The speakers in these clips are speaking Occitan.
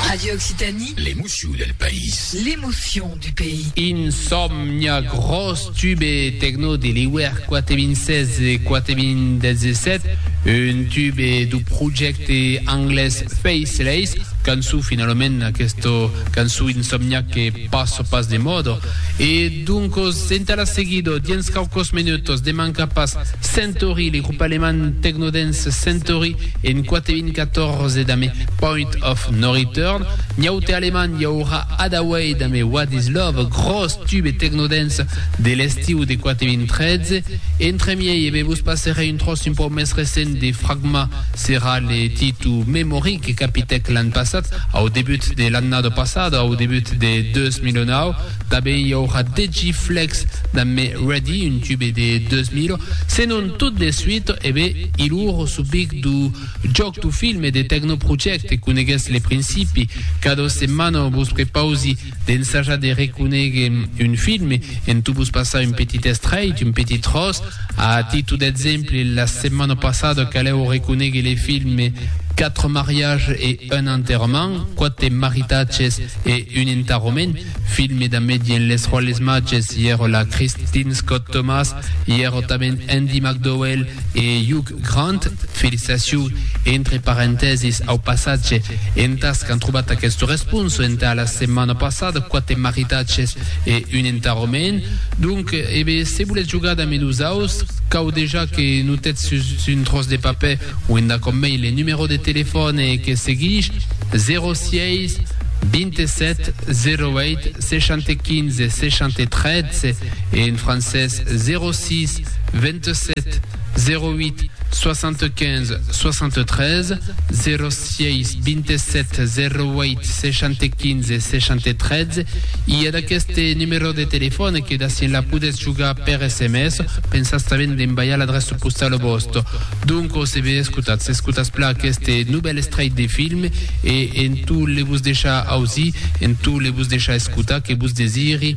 Radio Occitanie. L'emoció del país. L'emoción du pays. Insomnia, gròs tube tecno de l'iuèr 4.016 e 4.017, un tube du projècte anglés Faceless, cançó finalament aquesta cançó insomnia que Passo pas de modo. E doncos, entà la seguido, diens quauquos menutos, de manca pas, Centaury, le grup alemand tecno-dance Centaury, en 4.014 damb Point of No Return. Nhaute alemand i aurà Hadaway damb What Is Love, gròs tube tecno-dance de l'estiu de 4.013. Entremiei e be vos passerè un tròç un pauc mès recent de Fragma, serà le Titu Memory que capitèc l'an passat. Au debut de l'annada passada, au debut de 2009, tanben i aurà degi Flex damb Me Ready, un tube de 2000, senon tot de suit, e be, i lor subic du jòc du film e de Techno Project, coneguètz le principi, cada setmana vos prepausi D'ensajar de reconéguer un film en tu vos passar un petit estrèit, un petit tròç, a titu d'exemple, la setmana passada calèu reconéguer le film Quatre mariages et un enterrement, Quate maritatges e un entarrament, film damb dien Les Rois les Mages, i èra la Christine Scott-Thomas, i èra tanben Andie MacDowell e Hugh Grand, felicitacion entre parentèsis au passatge entàs qu'an trobat aquesta responsa entà la setmana passada, quate maridatges e un entarrament. Donc, ebe, se volètz jogar damb nosaus, cau dejà que notetz sus un tròç de papèr o endac omei le numerò de telefòne que seguish, 06 27 08 75 73, en francés, 06 27 08 75 73 06 27 08 615 613 i a d'aqueste numèro de telefòn que d'acian la podètz jogar per SMS, pensatz tanben d'envaiar l'adreça postala vòsta. Donc o se ve escotatz, escotatz pla aqueste novèl estrait de film e en tot le vos deixar ausir, en tot le vos deixar escotar que vos desiri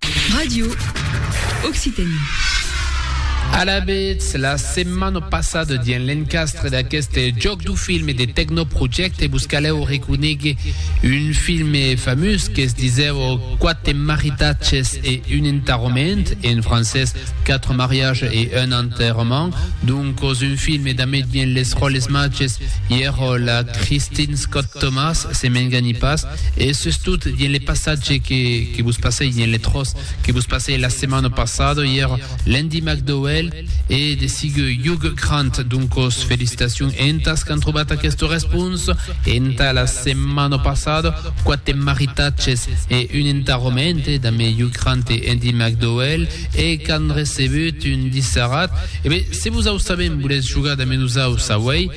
Radio Occitanie. Alavetz, la setmana passada dins l'encastre d'aqueste jòc du film e de Tecnoprojecte vos calèu reconéguer un film famós qu'es disèu Quate maritatges e un enterrament, en francés Quatre mariages et un enterrement, doncos un film damb dins les ròles matges i èra la Christine Scott-Thomas, se m'engani pas. E sustot, dins le passatge que vos passèi, dins le tròç que vos passèi la setmana passada, i èra L'Andy McDowell e de sigue Hugh Grant. Doncas, felicitacions entas qu'an trobat aquesta responsa entà la setmana passada. Quate maritatges e un entarrament damb Hugh Grant e Andy McDowell e qu'an recebut un dissarat. E ben, se vos au sabèm, volètz jogar damb nosaus auèi?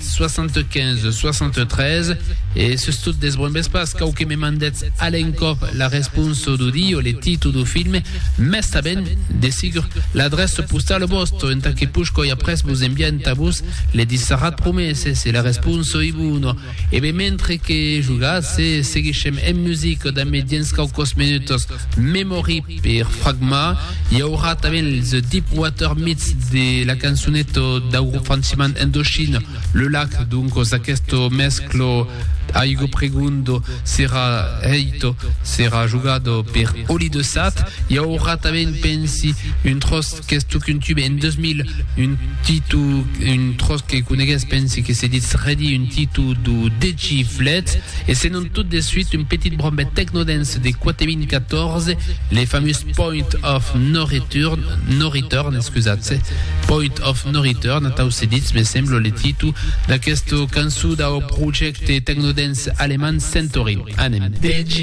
75 63 e sustot desbrombes pas cau que me mandetz a l'encòp la responsa do di o le títol do filme mès tanben de sigur l'adreça postala vòsta entà que push coi après vos enviar entà vos le dissarrat promés e se la responsa ei bona e ben mentre que jogatz e seguishem en musica damb me diens caucos minutos memory Per fragmar, i aurà tanben The Deep Water Myths de la cançoneta dau grop franciman Indochine, Le Lac, doncos aqueste mesclo aigo pregondo serà hèito, serà jogado per Oli de Sat, i aurà tanben pensi un tròç qu'es totun un tube en 2000 un titu un tros que conegues pensi que se ditz redi un titu do deci flets e se non tot de suite un petit brombet tecnodance de 4014 le fameux point of no return no return excusatz point of no return tau se ditz me semblo le titu d'aquesta cançó dau projecte tecnodance alemand Centaury anem deci